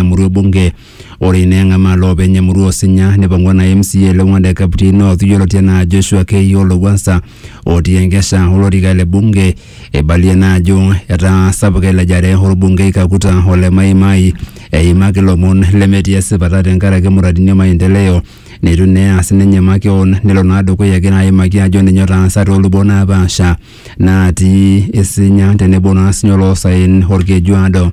emurua ebunge ore ina eng'amaa loopeny emurua osinya nipang'ua na mca le Wang'anda Kapti North yioloti anaa Joshua Keio Lowuansa otii enkesha olorika le bunge eibalie naa ajo etaa sapuk elejare orbungei Kakuta ole Mai Mai eimaki lomon lemetii esipata tenkaraki muradini e maendeleo neitu naa eas ninye makeon nelo naa dukuya egira aimaki ajo ninye otaasa toolubot naapaasha natii isinya tenebo naa sinye oloosaen olkejuado.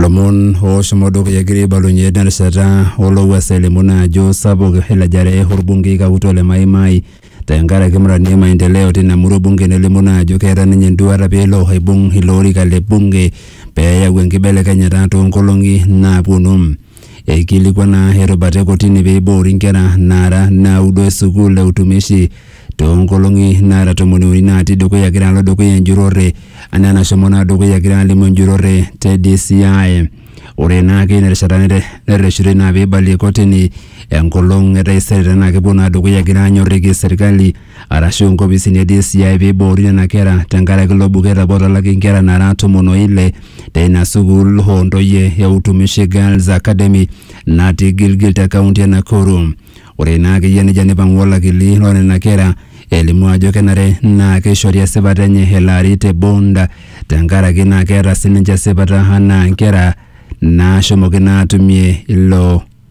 lomon ooshomo dukuya egira aibalunye terishata olowuasa elimu naa ajo sapuk elejare orbungei kakutua le Mai Mai tenkaraki mradi e maendeleo tina murua e bunge nelimu naa ajo keeta ninye enduata peelo aibung ilo orika le bunge peyau enkibelekenyata toonkolong'i naaponu. Eikilikuana erubata e kotini pee eiboori nkera naara naudo e sukuul e utumishi too nkolong'i naara tomoni uni naatii dukuya egira alo dukuya enjurore anaa enashomo naa dukuya egira alimu enjurore te DCI. Ore naa ake ina rishata nerreshitoi naa pee eibalie kotini enkolong e taisere tenaa kepuo naa dukuya egira aanyorriki serkali arashu inkopisini e DCI peiboori nena kera tenkaraki ilo buket apa otalaki inkera naara tomon o ile teina sukuul oo ntoyie e Utumishi Girls Academy natii Gilgil te kaunti e Nakuru. Ore ina akeyie neija neipang'u olakili loo nena kera elimu ajo kenare naa keishori esipata enye ele ari te bond tenkaraki naa keeta sininche esipata anaa inkera naashomoki naa atumie ilo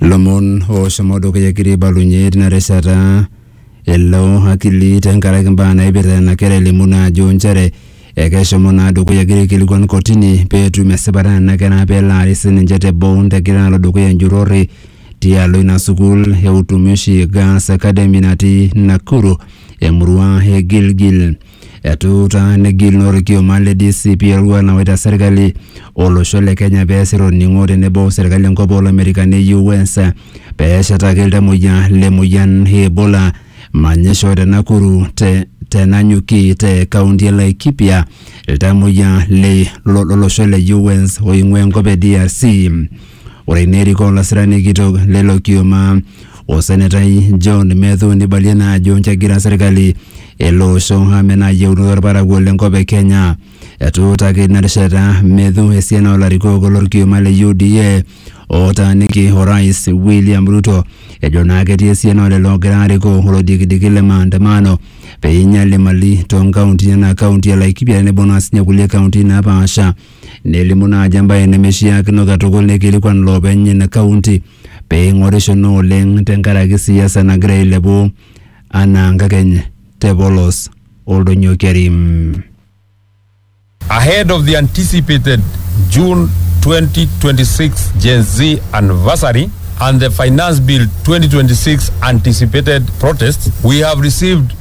lomon oshomo dukuya egira aibalunye tina rishata elo akili tenkaraki mbaa naipirta nena kera elimu naa ajo nchere ekeshomo naa dukuya egira aikilikuan kotini peetum esipata nena kera pelaari sininche te bond egira alo dukuya enjurrore tialo ina sukuul e utumishi girls academy natii Nakuru emurua e Gilgil Etuutaa negil naa olkioma le DCP eroruat nawaita serkali olosho le Kenya pee esir olning'o tenebo serkali enkop oo Lamerikani US pee eshetaki iltamoyia le moyian e Ebola manyisho te Nakuru te tenanyuki te kaunti e Laikipia iltamoyia le lolosho le US oing'ua enkop e DRC. Ore ina erikoo olasirani kitok lelo kioma o senetai John Methu neibalie naa ajo kegira serkali ele osho amenaa yieunoto olparakuo le nkop e Kenya. Etuutaki ina rishata Methu esiana oo larikok lo lkioma le UDA ootaaniki orais William Ruto ejo naa ketii esiana oo lelo oogira aarikoo olodikidiki le maandamano pee einyal imali too nkauntini enaa kaunti e Laikipia tenebo naa sii ninye kulie kauntini naapasha. nelimu naa ajo embae nemeishiakino katukul neikilikuan loopeny ina kaunti pee eing'orisho naa oleng tenkaraki siasa nagira ailepu anaa nkakeny te polos Oldonyio Kerim. Ahead of the anticipated June 2026 Gen Z anniversary and the Finance Bill 2026 anticipated protests, we have received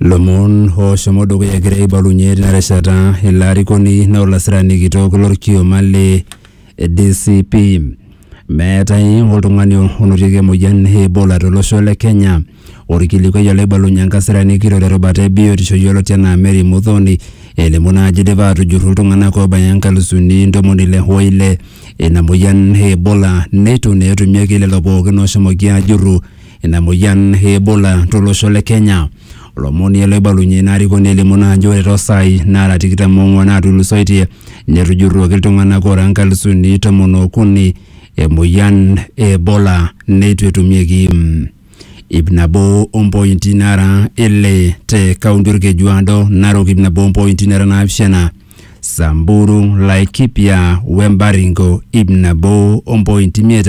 Lomon ooshomo dukuya egira aibalunye tina rishata ilo arikoni naa olasirani kitok lorkioma le DCP. Meetae oltung'ani onotieki emoyian e Ebola tolosho le Kenya. Orkilikuai olaibalunye enkasirani kitok terubata e biotisho yioloti enaa Mary Muthoni elimu naa ajo idipa atujurru iltung'anak oobaya inkalusuni ntomoni ile o ile ina moyian e Ebola neitu naa etumieki lelo pookin ooshomoki aajurru ina moyian e Ebola tolosho le Kenya. Olomoni ele oibalunye ina arikoni elimu naa ajo ore toosaai naara tikitam oong'wan naatulusoitie netujurruoki iltung'anak oora nkalisuni tomon ookuni emoyian e Ebola neitu etumieki ip nabo ompointi nara ile te kaunti Orkejuado, Narok ip nabo ompointi nara naapishana, Samburu, Laikipia we Baringo ip nabo ompointi imiet